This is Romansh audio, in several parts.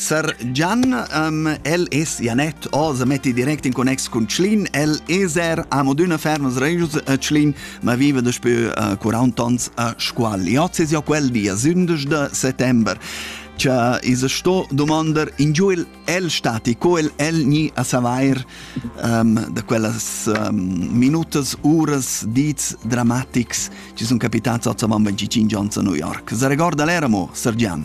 Sar Gian, um, el es Janet oz, metti direct in connex cun Tschlin, el es er amo d'üna fermas regius a Tschlin, ma viva daspö uh, 40 ans a Scuol. Oz es jo quel dia 11 de settember. Cha is sto domandar ingiu il el stati co el el ni a savair um, da quellas um, minutas, uras, dits dramatics ci sun capitats a Zavan 25 ans a New York. Se recorda l'eramo, Sir Gian?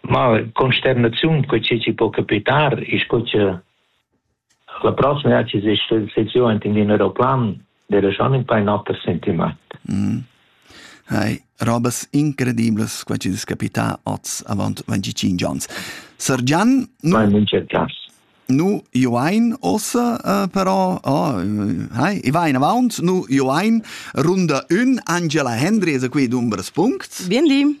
Ma consternaziun co che ci po capitar e sco che la prossima sessiun enten in aeroplan dera schon in paar noter sentiment. Mm. Hai, robas incredibles qua ci capita oz avant 25 ans. Sir Gian, nu, nu joain ossa uh, però oh, hai, e va in avant, nu joain runda ün Angela Hendry es a qui dumbers punct. Bien li.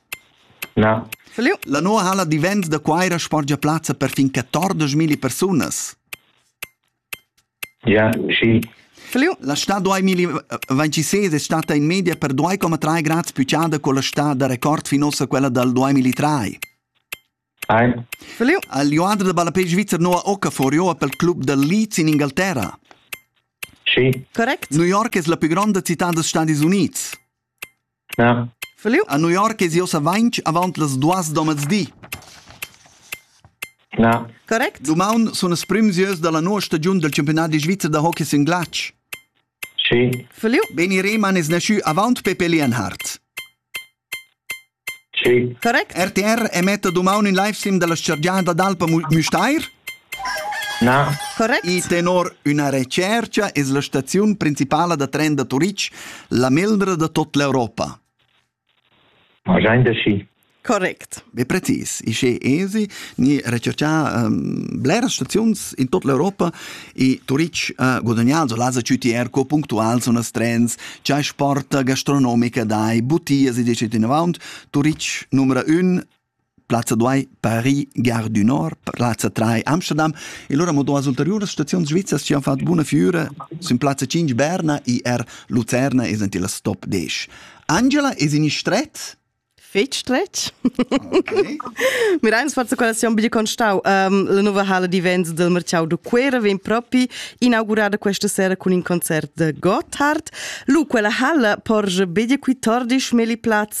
Na. La nova halla d'events da Cuira sporgia plazza per fin 14.000 persunas. Ja, sì. La stà 2026 è stata in media per 2,3 gradi più ciada con la stà da record fino a quella dal 2003. Ein. Al Joadra da ballapei svizzer nova Okafor joa pel club dal Leeds in Ingalterra. Sì. Correct. New York es la più grande città degli Stati Uniti. A New York es i ussa vainch avaunt las duos da mezdi. Correct. Dumaun sun as prüm sieus da la noua stagiun dal Championadi svizzer da hockey sün glatsch. Schi. Feliu. Beni Rehmann es naschü avaunt Pepe Leonhardt. Schi. Correct. RTR emetta dumaun ün livestream da la chargiada d'Alpa Müstair. I tenor üna retschercha es la staziun principala da tren da Turitg la meglra da tot l'Europa. Ma giain da schi. Correct. Be precis, ische esi ni recerchà um, bleras staziuns in tot l'Europa e Turitg ha guadagnado las CTR co punctuals unas trens, c'ha sporta gastronomica dai, butias e decet in avant, Turitg numera un Plazza duai Paris, Gare du Nord, plazza trai Amsterdam e lura mo duas ulteriuras staziuns svizzas ci han fatg buna fiura sin plazza 5 Berna e er Lucerna e sentì la stop 10. Angela, es in stret? Fetg stretg. Okay. Miraius forza quella si ombra constau um, la nuova hala di Venza del Marciau de Cuera vem propi inaugurada questa sera con in concert de Gotthard. Lu quella hala porge bede qui tordisch meli plaz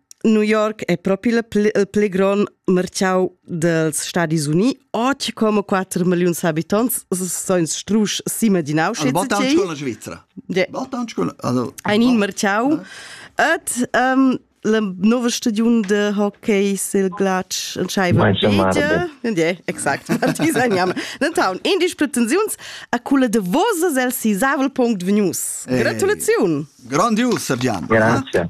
New York è propi il pli, il pli grond merciau dels Stadis Uniti. Oggi come 4 milioni habitanti sono strusch sima di Auschwitz. Also bot anche con la Svizzera. Ja. Bot anche con also ein in merciau. Et ähm, le nuovo stagione de hockey sil glatsch entscheiva Mein Bedia. Ja, exakt. Marti sein Name. Denton, in dis pretensiuns a quella davosa del sisavel punct venius. Gratulaziun. Grandios, Sergiano. Grazie.